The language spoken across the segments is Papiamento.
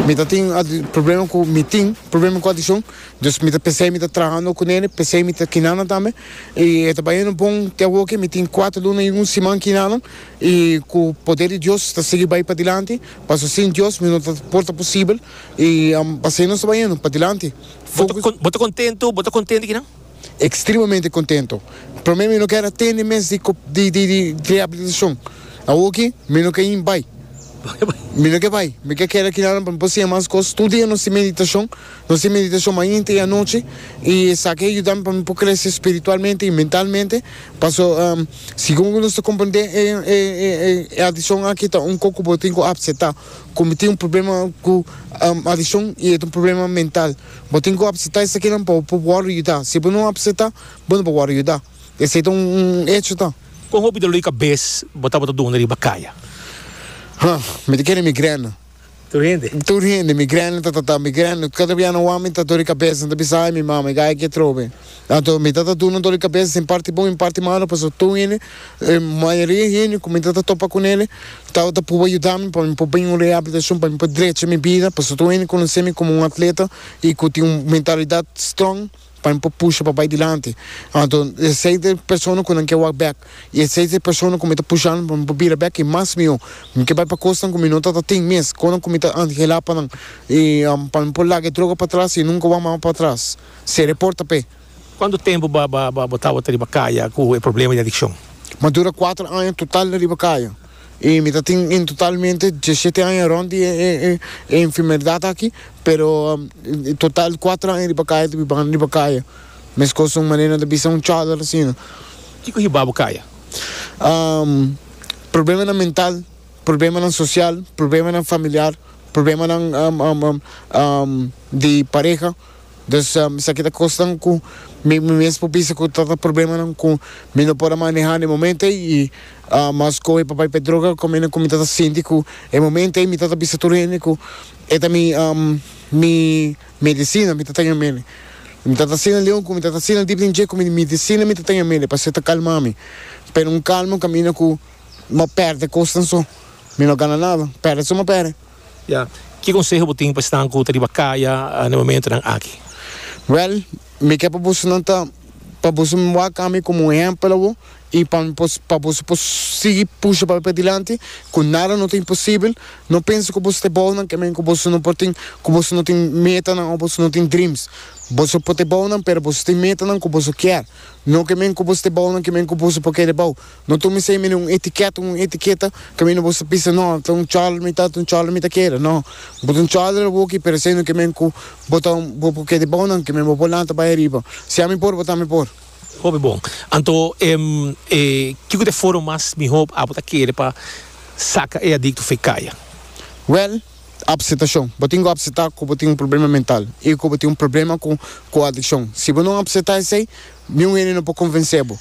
Mi ta tin problema cu mi tin problema cu adiccion dus mi ta pensei mi ta trahando cu nene pensei mi ta kinanan tambe y e ta bayendo bon te awoke mi tin cuatro luna y un siman kinanan y cu poder di Dios ta sigui bay padilanti pasobra sin Dios mi no ta por ta posibel y asina nos ta bayendo padilanti. Bo ta contento? Bo ta contento ki nan? extremamente contento. Prome mi no ker a tende mes di di rehabilitacion, awor aki mi no ken bai, mi no ke bai, mi ke keda aki nadan pa mi por siña mas cos, tur dia nos tin meditacion, nos tin meditacion mainta y anochi y esaki a yuda mi pa mi por crece spiritualmente y mentalmente, paso segun nos ta comprende e e e e adiccion aki ta un co cu bo tin cu acepta, cu mi tin un problema cu adiccion y e ta un problema mental. Bo tin ku apsetá esakinan pa bo wòrdu yudá. Si bo no apsetá, bo no por wòrdu yudá. Esei ta un echo ta. Kon hopi dolor di kabes bo tabata duna riba kaya? Ha, mi ta kere migrèna. Tur hende? Tur hende. Migrèna ta tratá migrèna. Kada bianan wak mi ta dor di kabes, nan ta bisa, Ai, mi mama, i gaya ke trobe. Anto mi ta ta duna dor di kabes den parti bon i parti malo pasobra tur hende, mayoria di hende ku mi ta ta topa ku nel tabata pruba yuda mi pa mi por bini un rehabilitashon pa mi por drecha mi bida pasobra tur hende konosé mi komo un atleta i ku tin un mentalidat strong pa mi por pusha pa bai dilanti anto esei ta e persona ku nan ke wak bèk i esei ta e persona ku mi ta pusha nan pa mi por bira bèk i mas mihó mi ke bai pa kosnan ku mi no ta ta tin mes konan ku mi ta anhela pa nan i pa mi por laga e droga patras i nunka wak mas patras. Sere porta p'e. Cuantu tempu bo bo tabata riba caya cu e problema di adiccion? M'a dura cuater aña total riba caya y mi ta tin en totalmente diesisiete aña rond di e enfermedad aki, pero total cuater aña riba caya ta bibanan riba caya, mescos un manera nan ta bisa un chadar asina. Kico hiba bo caya? Problemanan mental, problemanan social, problemanan familiar, problemanan di pareha. Dus esaki ta kosnan ku mi mi mes por bisa ku ta ta problemanan ku mi no por a manehá na e momento ei i ma skohe pa bai pa e droga komente ku mi ta ta sinti ku e momento ei mi ta ta bisa tur hende ku e ta mi mi medisina mi ta tenge mele mi ta ta asina leon ku mi ta ta asina dip den dje ku mi medisina mi ta tenge mele pasobra e ta kalmá mi pero un kalma kamina ku mi a pèrdè kosnan so mi no a gana nada pèrdè so mi a pèrdè. Ya, ki konseho bo tin pa esnan ku ta riba kaya na e momentunan aki? Wèl, mi ke pa boso nan ta pa boso waka mi komo un ehèmpel i pa mi por pa boso por sigui pusha papia dilanti ku nada no ta imposibel. No pensa ku boso ta e bou nan ke men ku boso no por tin ku boso no tin metanan òf boso no tin dreams. Boso por ta e bou nan pero boso tin metanan ku boso kier, no ke men ku boso ta e bou nan ke men ku boso por keda e bou. No tuma esei mene un etikèt, un etiketa, kaminda bo sa pisa, no, ta un chòl mi ta, ta un chòl mi ta keda. No, bo ta un chòl di laboki, pero esei no ke men ku bo ta un, bo por keda bou nan, ke men bo por lanta bai ariba. Si ami por, bo tambe por. Hopi bon. Anto, em, e, kiko ta e forma mas mihó abo ta keda pa saka e adikto fei kaya? Wèl, apsetashon. Bo tin ku apsetá ku bo tin un problema mental i ku bo tin un problema ku, ku adikshon. Si bo no apsetá esei. Niun hende no por convencé bo.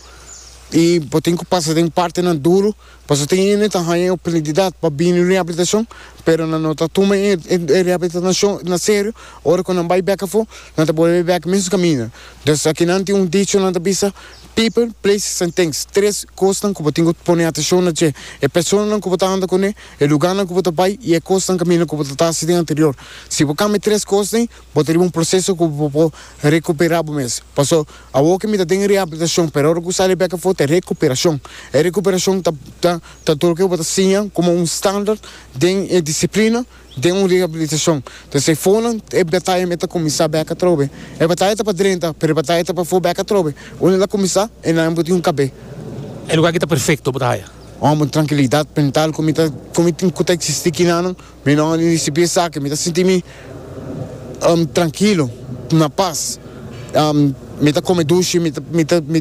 Y bo tin cu pasa den partenan duro, pasobra tin hende ta haña e oportunidad pa bini rehabilitacion, pero nan no ta tuma e rehabilitacion na serio, ora cu nan bay bek afo, nan ta bolbe bek e mes caminda. Entonces, aki nan tin un dicho nan ta bisa, People, places and things, tres cosnan cu bo tin cu pone atencion na dje, e personanan cu bo ta anda cune, e lugarnan cu bo ta bay y e cosnan, caminda, cu bo ta ta haci den anterior. Si bo cambia e tres cos dey, Bo ta riba un proseso ku bo por rekuperá bo mes. Paso, awor ke mi ta den reabilitashon, pero ora ku mi sa riba bek afor ta e rekuperashon. E rekuperashon ta, ta, ta tur ke bo ta siña komo un standaard den e disiplina den un reabilitashon. Entonces e fonan, e bataya me ta kuminsá bek atrobe. E bataya ta pa drenta, pero e bataya ta pafó bek atrobe. Unda el a kuminsá, e nan bo tin un kab'é. E lugá ki ta perfekto bo ta haya. Un trankilidat mental ku mi ta, ku mi tin ku ta eksistí kina nan. Mi no a risibí esaki, mi ta sinti mi trankilo, na pas. Mi ta kome dushi, mi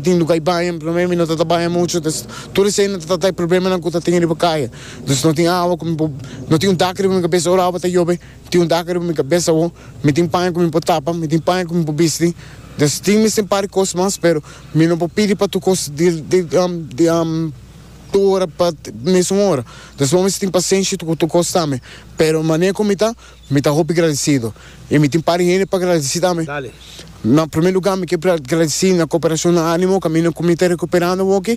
tin lugá di baña, promé mi no ta ta baña muchu, entonces tur esei no ta trata e problemanan ku ta tin riba kaya. Entonces no tin awa ku mi por, no tin un daka riba mi kabes, ora awa ta yobe, no tin un daka riba mi kabes awor, mi tin paña ku mi por tapa, mi tin paña ku mi por bisti, entonces tin mester un par di kos mas, pero mi no por pidi pa tur kos di. tur ora pa mesun ora. Entonces bo mester tin pasenshi cu tur cos tambe. Pero manera cu mi ta, mi ta hopi gradecido. Y mi tin pari hende pa gradeci tambe. Na primer lugar mi ke gradeci na Cooperacion Animo caminda cu mi ta recuperando awor aki.